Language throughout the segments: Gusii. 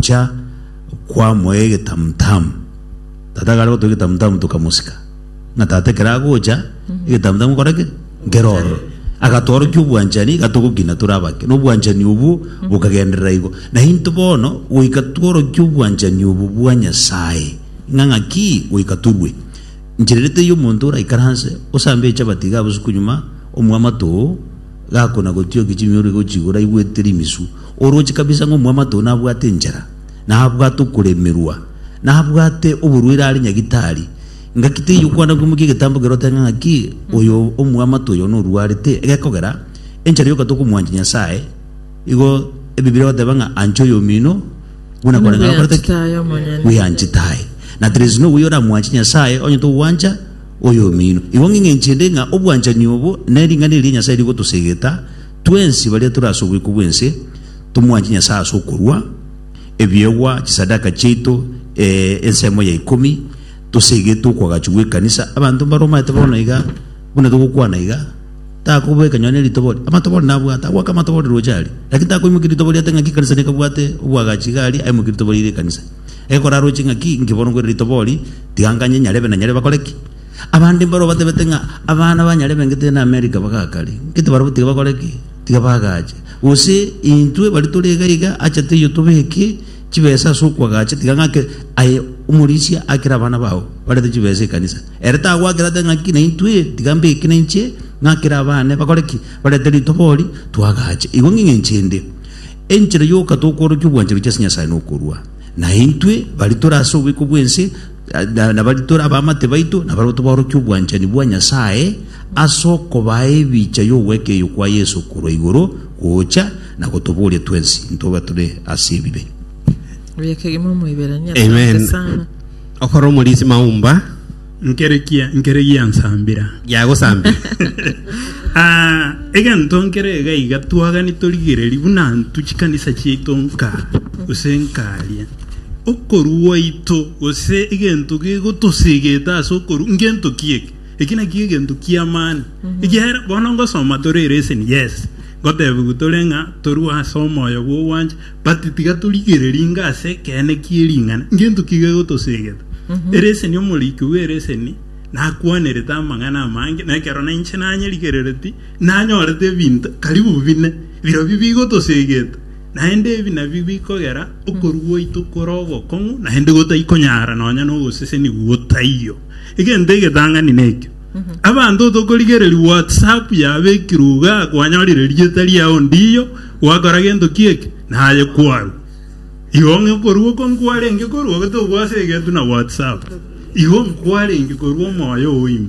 Gocha kwamoe egetamutamu, tata ekare gotoa egetamutamu tokamosika, ng'a tata ekero agocha egetamutamu nkore ki? Nkere ororo. Agatworokia obwanchani iga togokina tore abake, na obwanchani obwo bokagenderera igo. Na intwe bono goika tworokie obwanchani obo bwa Nyasae, ng'a ng'aki goika torue. Nchera ere teiyo omonto oraikaranse osambe echabati iga botuko nyuma, omwamato oo gakona gotiokia chimioro iga ochigure aigwete rimisu, Oroche kabisa ng'a omwamato nabwate enchera, na abwate okoremerwa, na abwate oborwaire are nyagitari. Ngaki teiyo okwana kwimokia egetambo kerote ng'a ng'aki oyo omwamato oyo norwarete. Egekogera, enchera yoka tokomwancha Nyasae, igo Ebibilia egoteba ng'a ancha oyomino buna koreng'ana okorete ki? Bweanchete aye omonyene. Bweanchete aye. Na there is no way oramwanche Nyasae onye togwancha oyomino. Igo ng'ing'enchende ng'a obwanchani obo ne ring'ana eria Nyasae rigotosegeta Twensi baria tore ase oboiko bw'ense tomwanche Nyasae ase okorua ebiegwa, chisadaka chiaito, ee, ensemo ya ikomi, toseegete okwagachwa gw'ekanisa. Abanto mbaromanyete bono iga buna togokwana iga, takoboeka nonye ritobori. Amatobori nabwate, agoaka amatobori roche aria, lakini takoimokia ritobori ate ng'aki ekanisa nekabwate obwagachi iga aria, aimokie ritobori riria ekanisa. Egekora aroche ng'aki inki bono nkwere ritobori, tiga nganye nyarebe na nyarebe bakore ki? Abande mbaro batebete ng'a abana banyare bengete na Amerika bagakare, gete barabwo tiga bakore ki? Tiga bagache. Gose intwe baria tore iga iga, acha teiyo tobeke chibesa ase okwagacha, tiga ng'ake aye omorisia akere abana bao, barete chibesa ekanisa. Ere tagoakera ate ng'aki naintwe, tiga mbeke nainche ng'akere abane bakore ki? Barete ritobori, twagache. Igo ng'ing'enche ende, enchera yoka tokworokia obwanchani bwa Nyasae nokorua. Naintwe baria tore ase obiko bw'ense, Na- nabaria tore abamate baito, nabarabwo tobaorokia obwanchani bwa Nyasae, ase okobaa ebicha y'ogweka eyo kwa Yeso korwa igoro gocha, na gotoboria twensi ntobe tore ase ebibe. Oye kegima Omoiberania, asante Amen. sana. Okora omorisi maumba Nkerekia nkere giansambira. giagosambia. Ah, egento nkere iga iga twagani torigereri buna ntu chikanisa chiaito nka gose nkaria. Okorua gwaito, gose egento gegotosegete ase okorua, ngento ki eke? Eki nakio egento ki'amani. Ekiagera bono ngosoma tore eresen, yes, ngotebiwa tore ng'a torue ase omoyo bw'ogwancha, but tiga torigererie inga ase ekeene kie ring'ana, ngento ki gegotosegete? Eresen, omoriki bw'eresen nakwanerete amang'ana amange, na ekero nainche nanyerigereretie, nanyorete ebinto karibu bine, birobio bigotosegete. Naende ebi nabio bikogera okorua gwaito kore ogokong'u, naende gotaikonyara nonya nogosesenigwa gotaiyo. Egento egetang'ani nekio, abanto tokorigereria WhatsApp yabekirwe iga kwanyorire rieta riao ndiyo gwakora gento ki eke, naye kwarwa. Igo ng'a okorua oko nkwarenge korua gotobua ase egetu na WhatsApp, igo nkwarenge korua omoyo oime.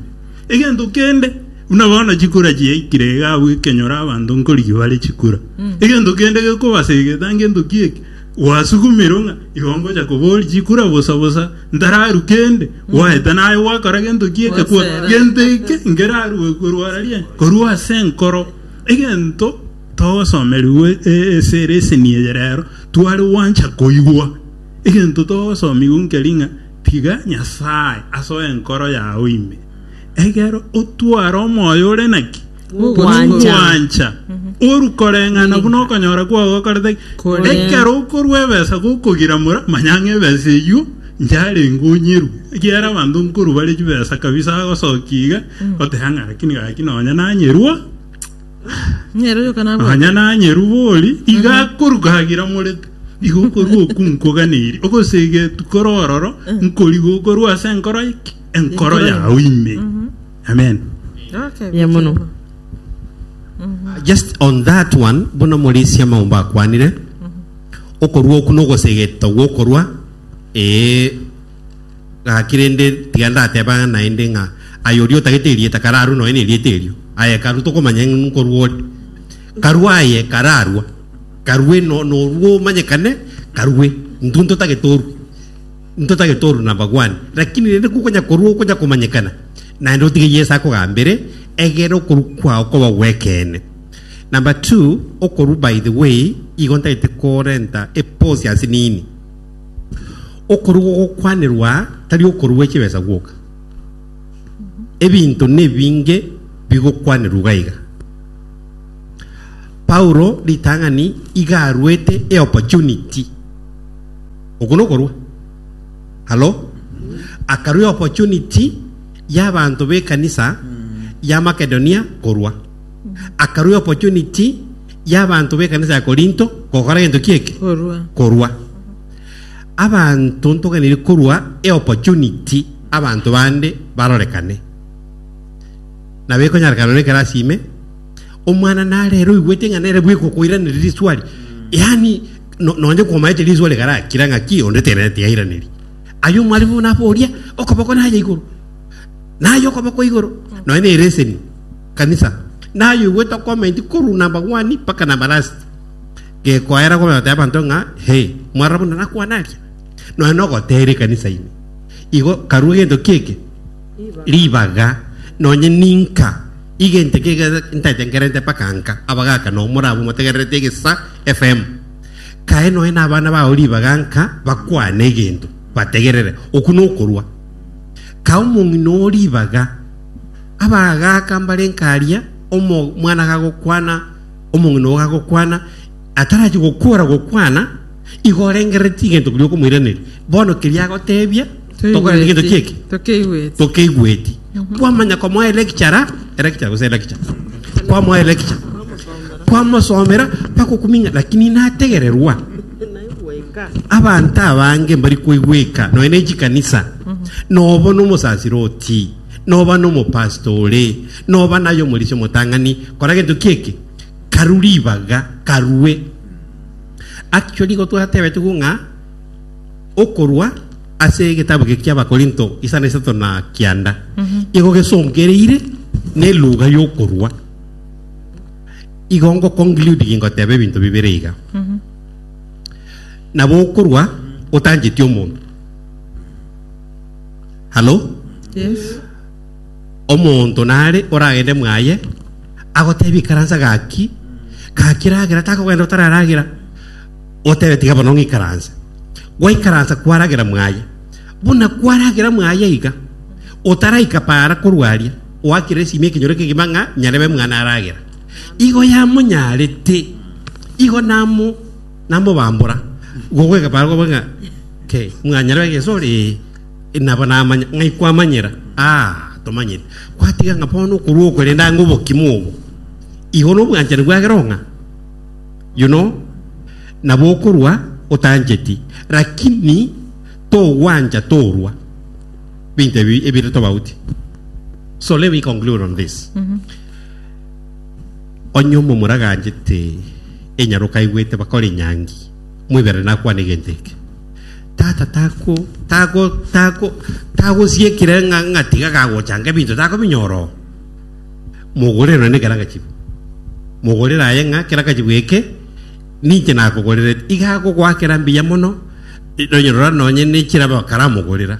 Egento kende, buna bono chikura chiaikire iga abwo ekenyoro abanto nkorigia bare chikura, egento kende gekobasegeta ngento ki eke? Gwasugumirwe ng'a igo ngocha koboria chikura bosa bosa, ntararu kende, gwaete naye gwakora gento ki eke, kwa Gwasera. gento eke nkerarue korwa ara rie, korwa ase enkoro. Egento togosomerigwe e- esere eseni eye rero, tware gwancha koigwa egento togosomigwa nkeri ng'a Tiga Nyasae asoe enkoro yao ime, egero otware omoyo ore naki? Bw'ogwancha. Oru koreng'ana buna okonyora kwao gokorete ki? Koreng'ana. Ekero okorua ebesa gokogira mora, manya ng'a ebesa eyio yarenge onyerwe. Ekiagera abanto nkorwa bare chibesa kabisa agosokia iga, goteba ng'a rakini gaki nonye nanyerwa. Nyeruruka nabwate. Nonya nanyerubori iga akoruka agira morete. Igo okorua oku nkoganeiri ogosegetu kore ororo nkoriga okorua ase enkoro ki? Enkoro Enkoro yao yao. ime. Amen. Okay. Ye mono. bwekeigo. Just on that one, buna Omorisia Maumbo akwanire, okorua oku nogosegeto gwokorua, ee, Gaki rende, tiga ndatebe ang'e naende ng'a aye oria otagete erieta kararwe nonya nerieta erio. Aye karue tokomanya ng'a nkorwa ore. Karue aye kararwa, karue no norue omanyekane, karue. Intwe ntotagete orue, ntotagete orue na abagwani. Rakini rende kokonya korua okonya komanyekana, naende otige Yeso akogambere, egera okorua kwao koba gw'ekeene. Number two, okorua by the way, igo ntagete korenta epause ase nini. Okorua ogokwanerwa aa tari okorua chibesa gwoka. Ebinto nebinge bigokwanerwa iga iga. Paulo ritang'ani iga aruete e opportunity. Oko nokorua. Halo? Akarua e opportunity y'abanto b'ekanisa ya Makedonia korua. Akarua opportunity y'abanto b'ekanisa ya Korinto gokora gento ki eke? Korua. Korua. Abanto ntoganeire korua e opportunity abanto bande barorekane. Na bekonyarekana nore ekero ase ime omwana narere oigwete ng'a nere bweka okoiraneria riswali. Yaani no- nonye komaete riswali garakira ng'a ki onde tenete yairaneria. Aye omwalimu naboria okoboko naye igoro. Naye okoboko igoro. Nonye ne ereseni. Kanisa, nayoigwete okomenti korwa nabagwani mpaka nabarasti, gekoera komenya gotebia abanto ng'a, He, mwarora buna nakwana aria? Nonya nogoteera ekanisa ime. Igo karua gento ki eke? Ribaga. Nonya ninka igente ki eke ntatengerente mpaka nka abagaka nao morabwo motegererete egesa FM. Kae nonya nabana bao ribaga nka bakwane egento bategerere. Okwo nokorua. Kae omong'ina oo ribaga. Abagaaka mbare nkaria, omwana gagokwana, omong'ina oo gagokwana, atarachie gokora gokwana, igo orengereretie egento keria okomoiraneria. Bono keria agoteebia, tokoreti egento Toigweti. ki'eki, Tokeigweti. tokeigweti. Kwamanya komoa electurer, electurer gose electure, kwamoa electure, kwamosomera, bakokuminga, lakini nategererwa. Abanto abange mbari koigweka nonya ne chikanisa, nobo nomosasire oti, noba nomopastor ore, noba naye omorisia omotang'ani, kora gento kieke, karu ribaga, karue. Actually igo twatebetigwe ng'a okorwa ase egetabu geke ki'Abakorinto isana isato na kianda igo gesongereire neluga y'okorwa. Igo ngoconclude gingoteba ebinto bibere iga. Nabo okorwa otancheti omonto. Halo? Yes. Omonto nare oragende mwaye agotebi ikaransa gaki gaki ragera takogenda otararagera otebe tiga bono ng'ikaranse gwaikaransa kwaragera mwaye buna kwaragera mwaye iga otaraika para korwaria oakire esimi ekenyoro kegima ng'a nyarebe mwana aragera Igo yamonyarete, igo namo namobambora, gogwega barabwo bwe ng'a ke, mwanyarwa egesore, ee, nabo namanya, ng'ai kwamanyera? Aa, tomanyeti. Kwatiga ng'a bono okorua okorenda ang'e obokima obo, igo nobwanchani bwagera ong'a, you know, nabo okorua otancheti, lakini togwancha torua binto ebi ebire tobauti. So let me conclude on this. Onye omomura aganchete enyaroka aigwete bakora enyangi, moiberane nakwane egento eke. Tata tako tako tako tagosiekire ng'a ng'a tiga gagochanga ebinto takobinyora oo. Mogorere nonye kera gachibu. Mogorere aye ng'a kera gachibu eke ninche nakogorerete. Iga akogoakera mbuya mono nonye rora nonye ne chiraba karamogorera.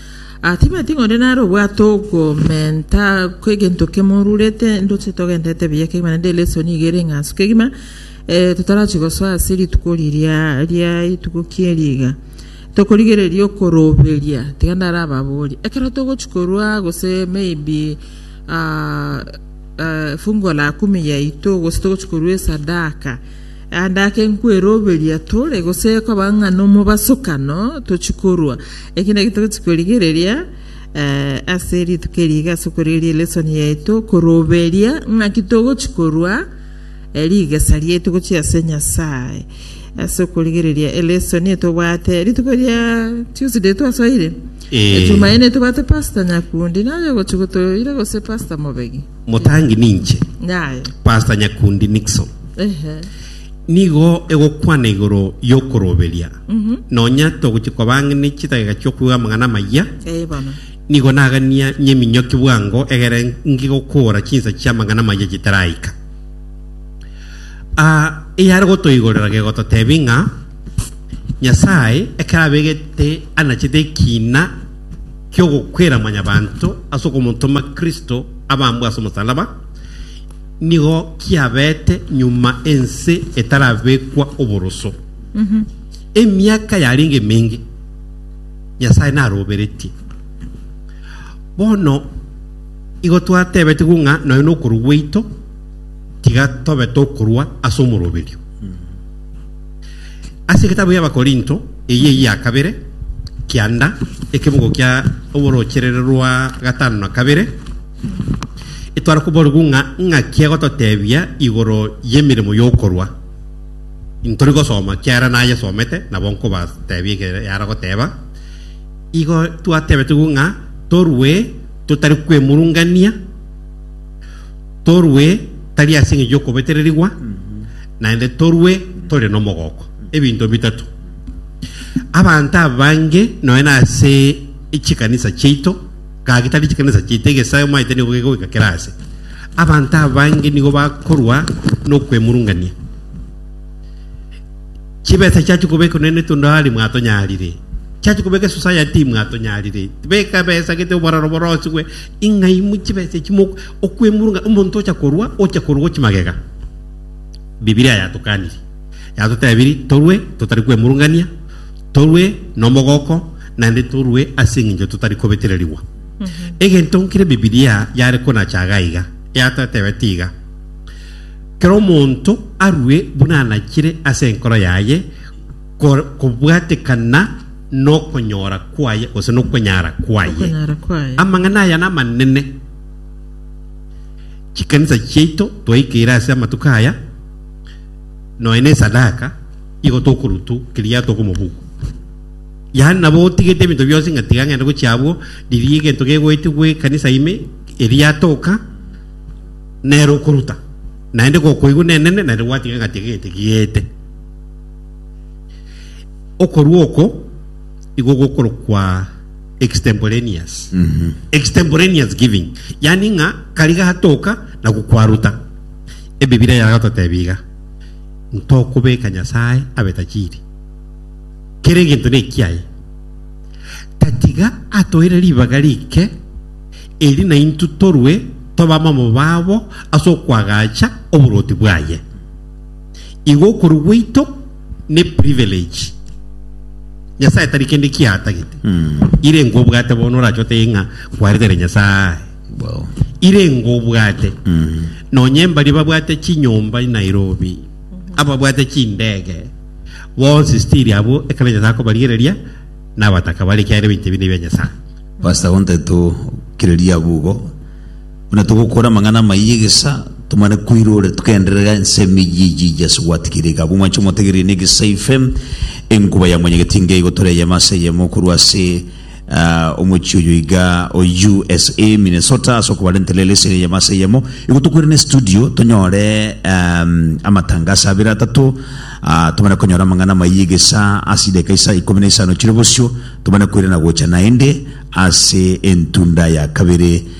Atebeti ng'onde nare obwate ogomenta kw'egento kemorurete, ndoche togenderete buya kegima, naende elesson iga ere eng'anso kegima, eh, totarachi gosoa ase rituko riria ria etuko ki'eri iga. Tokorigereria okoroberia, tiga ndarababori. Ekero togochi korwa gose maybe ah, eh, fungu la kumi yaito, gose togochi korwa esadaka, Naende ake nkweroberia tore, gose ekoba ng'a nomobasokano tochie korwa, eki naki togochia korigereria eh, ase rituko eri iga, ase okorigereria elesson yaito, koroberia ng'aki togochia korwa eh, rigesa riaito gochia ase Nyasae, ase okorigereria elesson etobwate rituko ria Tuesday twasoire, Eh. Ejumaine etobwate Pastor Nyakundi naye ogochia gotoira gose Pastor Mobegi. Motangi ninche Naye. Pastor Nyakundi Nixon Ehe. nigo egokwana igoro y'okoroberia Mhm. nonya togochi kobang'ini chidageka chi'okoigwa amang'ana amayia Ee bono. nigo nagania nyeminyoki bwango egere ngigokora chinsa chi'amang'ana amayia chitaraika Ah, eyare gotoigorera gegototebi ng'a nyasae ekero abegete anachete ekina ki'ogokwera mwanyabanto ase okomotoma Kristo abambwe ase omosalaba, nigo kiabete nyuma ense etarabekwa oboroso. Emiaka yarenge emenge Nyasae naroberetie. Bono igo twatebetigwe ng'a nonya nokorwa gwaito tiga tobe tokorwa ase omoroberio. Ase egetabu y'Abakorinto eyio eya kabere, kianda, ekebogo kia oboroocherere rwa gatano na kabere, etwara koborigwa ng'a ing'aki egototebia igoro y'emeremo y'okorwa. Intori gosoma kiara nayesomete, nabo nkobatebia eke yara goteba. Igo twatebetigwe ng'a torue totari kwemurungania, Torue tari ase engencho y'okobetererigwa, naende torue tore nomogoko. Ebinto bitato. Abanto abange nonya nase chikanisa chiaito, gaki tari chikanisa chiaito, egesae omaete nigo gegoika kera aase. Abanto abange nigo bakorwa nokwemurungania. Chibesa chiachia kobekwa naende tondo aria mwatonyarire. Chiachia kobekwa society mwatonyarire. Beka besa gete oboraro borosigwe. Ing'aimwe chibesa echi mo- okwemurwa ng'a omonto ocha korwa, ocha korwa gochia magega. Bibilia yatokaniri, yatotebiri torwe totari kwemurungania, torwe nomogoko, naende torwe ase eng'encho totari kobetererigwa. Egento nkere Bibilia yare konacha iga iga, yatotebeti iga, kera omonto arue buna anachire ase enkoro yaye, ko- kobwatekana nokonyora kwaye gose nokonyara kwaye Okonyara kwaye. amang'ana aya namanene chikanisa chiaito twaikeire ase amatuko aya noe na esadaka igo tokorutu keria atoka omobuko yaani nabo otigete ebinto bionsi ng'a tiga ng'ende gochia abwo riria egento gegoetigwa ekanisa ime eria atoka nere okoruta naende gokoigwa nenene naende gwatiga ng'a tiga egento kiete Okorua oko igo gokorokwa extemporaneous. Extemporaneous giving. Yani ng'a kari gatoka na gokwaruta. Ebibilia yago totebia iga. Ntokobeka Nyasae abe tajiri. Kera egento nekiaye. Tatiga atoire ribaga rike eri naintwe torue tobe abamobabo ase okoagacha oboroti bwaye. Igo okorua gwaito ne privilege Nyasae tari kende kiatagete. Ire engo obwate bono orache otebe ng'a kwaretere Nyasae. Wow. Ire engo obwate. Nonye mbari babwate chinyomba Nairobi, ababwate chindege, bonsi stiri abo ekero Nyasae akobarigereria nabataka bare kiagera ebinto ebi nebi bia Nyasae. Pastor gontetu kireria abugo Buna togokora amang'ana amayia egesa, tomanye koirora togenderera ensemo eyio eyio eyio ase gwatigeire iga. Abwo mwanche motegereri negesa ife, enkuba ya mwanyaga ti ngai gotora eyemo ase eyemo korwa ase ah, omochie oyo iga o USA, Minnesota, ase okobarentera eleseni eyemo ase eyemo. Igo tokoire ne studio tonyore um, amatangaso abere atato, ah, tomanye konyora amang'ana amayia egesa ase ideka isa ikomi na isano chire bosio, tomanye koirana gocha naende ase entunda ya kabere.